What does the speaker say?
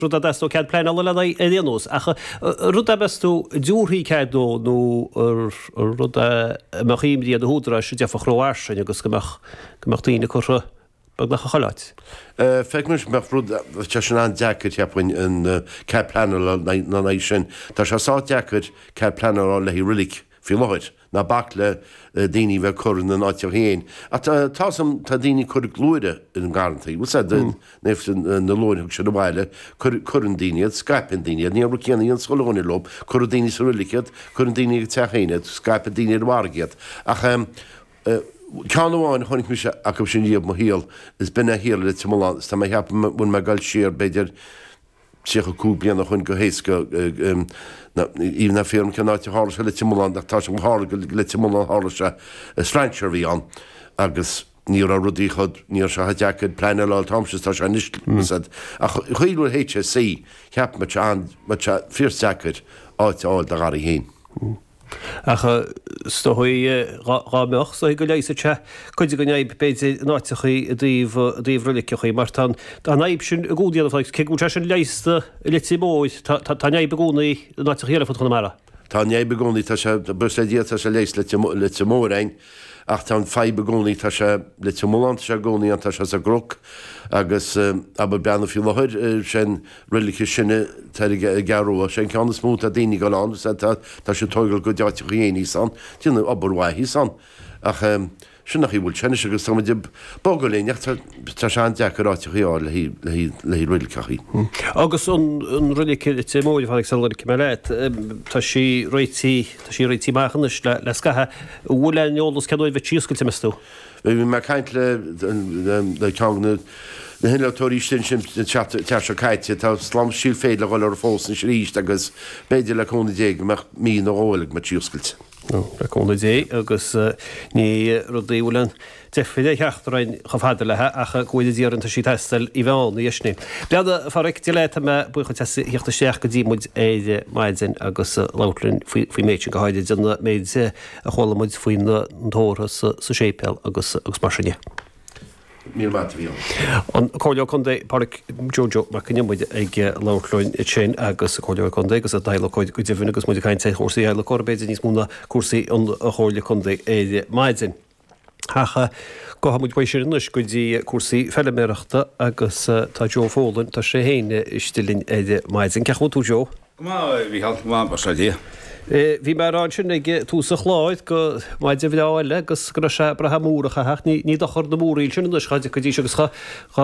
rud a dteastódh cead pleanála lena aghaidh anois, ach rud a meas tú an dtabharfaí cead dó nó rud a mbeadh imní ar na húdaráis a d'fhéadfadh rófhairsing agus go mbeadh daoine curtha beagnach i chuile áit. Feictear dhom go mbeadh rud acu sin an-deacair, cheapfainn, an cead pleanála lena aghaidh sin. Tá sé sách deacair cead pleanála a fháil le haghaidh reilig faoi láthair. Ná bac le daoine bheith ag cur ina n-áiteacha féin, ach tá's a'm, tá daoine ag cur luaithre i ngarrantaí. Bhuel, sea, ó thaobh na luaithre, tugann siad abhaile, cuireann daoine iad, scaipeann daoine iad, ní obair céanna í an Scoil Eoghain ar Lom, cuireann daoine sa reilig iad, cuireann daoine ag an teach féin iad, scaipeann daoine ar an bhfarraige iad. Ach ceann amháin a chonaic mise acu sin riamh i mo shaol, is b'in é a tharla i Leitir Mealláin, is tá mé ag ceapadh go bhfuil mé ag dul siar, b'fhéidir, 35 bliain ó shoin go héasca ní déarfaidh mé cén áit a tharla sé i Leitir Mealláin ach tá sé thiar i Leitir Mealláin a tharla sé strainséir a bhí ann agus ní raibh rudaí chomh ní raibh sé chomh deacair cead pleanála a fháil an t-am sin is atá sé anois an chaoi a bhfuil an HSE cheapfainnse go mbeadh sé fíor deacair áit a fháil i do gharraí féin. Ach is dóigh, dhá mbeadh, is dóigh go leigheasfadh sé cuid den fhadhb, b'fhéidir, in áiteachaí i dtaobh reiliceachaí, mar tá an fhadhb sin i gcónaí ar fad, cé go bhfuil sé sin leigheasta i Leitir Móir, tá an fhadhb i gcónaí in áiteachaí eile ar fud Chonamara. Tá an fhadhb i gcónaí, tá sé, buíochas le Dia, tá sé leigheasta i Leitir Móir, Ach tá an fadhb i gcónaí, tá sé i Leitir Mealláin, tá sé i gcónaí ann, tá sé ar an gCnoc, agus, abair, Barr an Doire faoi láthair, sé an reilig is sine atá ar an gCeathrú Rua, sé an ceann is mó atá daoine ag dul ann, is é, tá, tá siad ag tóigeáil a gcuid áiteacha féin thíos ann, ag déanamh obair mhaith thíos ann. Ach, sin an chaoi a bhfuil sé anois, agus tá muid ag bogadh linn, ach tá, tá sé an-deacair áiteacha a fháil le haghaidh, le haghaidh, le haghaidh reiliceachaí. Agus an, an reilig, i Leitir Móir a tháinig sa liric, cuma leat, tá sí réitithe. Tá sí réitithe amach anois le scaitheamh. An bhfuil aon eolas cén uair a bheas sí oscailte, meas tú? Bhí mé ag caint le ceann de na hinnealtóirí sin an tseachtain seo caite. Tá slám síl féir le dhul orthu fós anois aríst agus b'fhéidir le cúnamh Dé go mbeadh mí nó dhó eile go mbeadh sí oscailte. Le cúnamh Dé agus ní rudaí a bhfuil aon. Deifir a theacht orainn chomh fada léi ach go bhfuil muid iarrantaisí taistil i bhFionn, a Dheisni. Bhuel a Phádraic, Dia leat, tá mé buíoch dhíot as a theacht isteach go dtí muid ar maidin agus labhairt linn faoin méid sin, go háirid an méid a chuala muid faoi na tórraimh sa séipéal agus mar sin de. Míle maith agat. B'in an Comhairleoir Contae, Pádraic Joe Joe Mac an Iomaire ag labhairt linn ansin agus é ina Chomhairleoir Contae agus ina adhlacóir go deimhin agus muid ag caint ar chúrsaí adhlacóra, b'fhéidir níos mó ná cúrsaí an Chomhairle Contae ar maidin. Ach gabhfaidh muid uaidh sin anois go dtí cúrsaí feiliméarachta agus tá Joe Folan, tá sé féin istigh linn ar maidin. Cén chaoi a bhfuil tú Joe? Go maith a Mhícheál, go maith Go saolaí Dia. Bhí mé a rá ansin ag tús an chláir gur maidin bhreá eile agus go raibh sé ag brath múr a chaitheamh, ní dochar na múraíl sin anois dhá dtiocfaidís agus dhá.